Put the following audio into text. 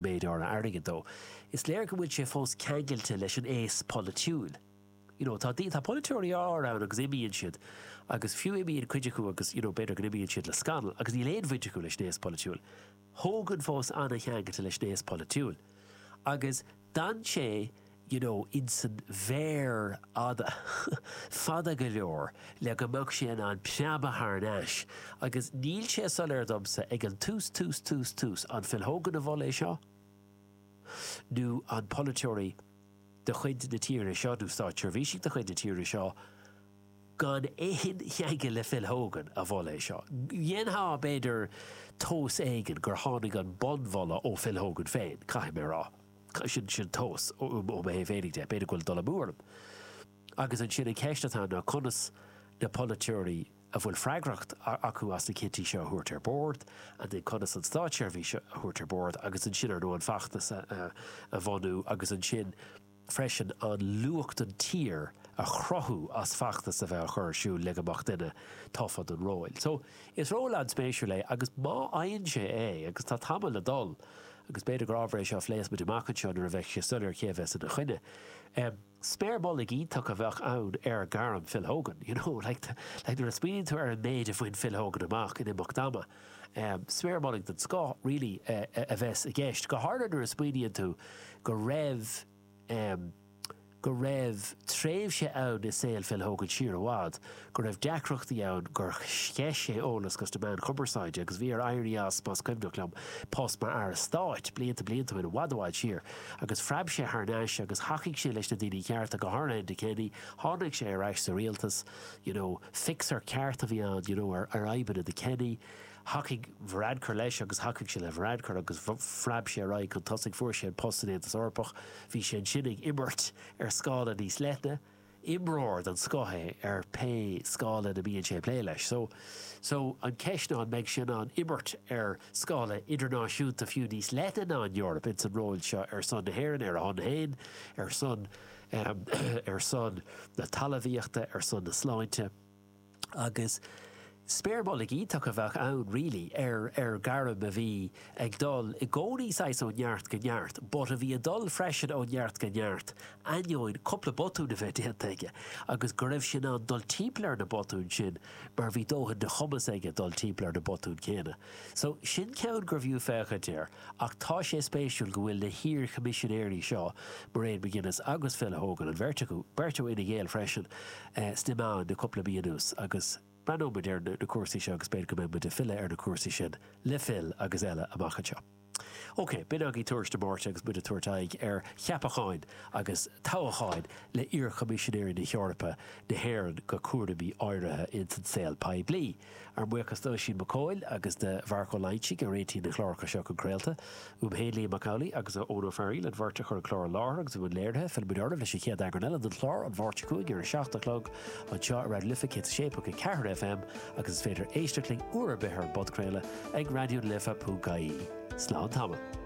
méid áirithe airgid dó. Is léir go bhfuil sé fós ceangailte leis an aos polaitiúil. You know, tá, tá polaiteoirí áirithe ann agus imíonn siad agus fiú imíonn cuid acu agus, you know, b'fhéidir go n-imíonn siad le scannal agus níl aon bhaint acu leis an aos polaitiúil. Tá Hogan fós an-cheangailte leis an aos polaitiúil. Agus d'fhan sé you know, insan bhféar fhada, fada go leor le go mbeadh sé in ann preabadh thar n-ais agus níl sé soiléir domsa ag an tús, tús, tús, tús, an Phil Hogan a mhol é seo nó an polaiteoir de chuid na tíre seo nó státseirbhísigh de chuid na tíre seo, gan aon cheangal le Phil Hogan, a mhol é seo. Dhéanfá, b'fhéidir, tomhas éigin gur tháinig an bunmholadh ó Phil Hogan féin, caithfidh mé a rá. sin sin tomhas ó mo thaobh féinig de. B'fhéidir go bhfuil dul amú orm. Agus ansin an cheist atá ann ná conas na polaiteoirí a bhfuil freagracht acu as na cinntí seo a thabhairt ar bord, ansin conas an státseirbhís a thabhairt ar bord agus ansin ar ndóigh an feachtas a bhunú agus ansin freisin an luach don tír a chruthú as feachtas a bheith á chur ar siúl le go mbeadh duine tofa don ról. So is ról an-spéisiúil é agus má fhaigheann sé é, agus tá tamall le dul, Agus b'fhéidir gur ábhar é seo a phléas muid amach anseo nuair a bheidh sé soiléir cé a bheas ina choinne. Sméar mullaigh iontach a bheadh ann ar ghairm Phil Hogan, you know, like like nuair a smaoiníonn tú ar an méid a bhain Phil Hogan amach in imeacht ama, sméar mullaigh den scoth really a bheas i gceist, go háirithe nuair a smaoiníonn tú go raibh. em. go raibh tréimhse ann i saol Phil Hogan siar i bhfad go raibh deacrachtaí ann gur sceith sé eolas chuig na meáin chumarsáide agus bhí air éirí as, más cuimhneach liom, post mar Aire Stáit, blianta blianta ó shin, i bhfad i bhfad siar. Agus phreab sé thar n-ais agus thacaigh sé leis na daoine cearta, go háirithe Enda Kenny, tháinig sé ar ais sa rialtas, you know, fixer ceart a bhí ann, you know, ar fhadhbanna do Kenny. Thacaigh Varadkar leis agus thacaigh sé le Varadkar agus phreab sé ar aghaidh chun tosaigh. Fuair sé an post san Aontas Eorpach. Bhí sé ansin ag imirt ar scála níos leithne. Imreoir den scoth é ar pé scála ina mbíonn sé ag plé leis. So, so, an ceist ná an mbeidh sé in ann imirt ar scála idirnáisiúnta fiú níos leithne ná an Eoraip ins an ról seo ar son na hÉireann, ar a shon féin, ar son, ar son na talmhaíochta, ar son na sláinte. agus sméar mullaigh iontach a bheadh ann really ar ar gairm a bhí ag dul i gcónaí saghas ó neart go neart but a bhí ag dul freisin ó neart go neart ainneoin cúpla botún a bheith déanta aige agus go raibh sé in ann dul timpeall ar na botúin sin mar bhí dóthain de chumas aige dul timpeall ar na botúin céanna so sin ceann gurbh fhiú féachaint air. Ach tá sé spéisiúil go bhfuil na hiar-Choimisinéirí seo, Mairead McGuinness agus Phil Hogan, an bheirt acu, beirt ó Fhine Gael freisin, sna meáin le cúpla mí anuas agus breathnóidh muid ar na cúrsaí seo agus b'fhéidir go mbeidh muid ag filleadh ar na cúrsaí sin le Phil agus eile amach anseo. Ok, b'in againn tuairisc na Máirte agus muid ag tabhairt aghaidh ar cheapacháin agus toghacháin le iar-Choimisinéirí na hEorpa, na hÉireann go cúraimí áirithe ins an saol poiblí. Ár mbuíochas d'Oisín Mac Cóil agus de Mharc Ó Loingsigh a réitigh na cláracha seo chun craolta. Uaim féin, Liam Mac Amhlaigh agus ó Eoin Ó Fearaíl, an bheirt a chur an clár i láthair agus i mbun léirithe. Fillfimid oraibh leis an chéad eagrán eile den chlár, An Mháirt seo chugainn ar a seacht a chlog, anseo ar Raidió na Life 106.4 FM agus is féidir éisteacht linn uair ar bith ar an bpodchraoladh ag raidiolife.ie. Slán tamall.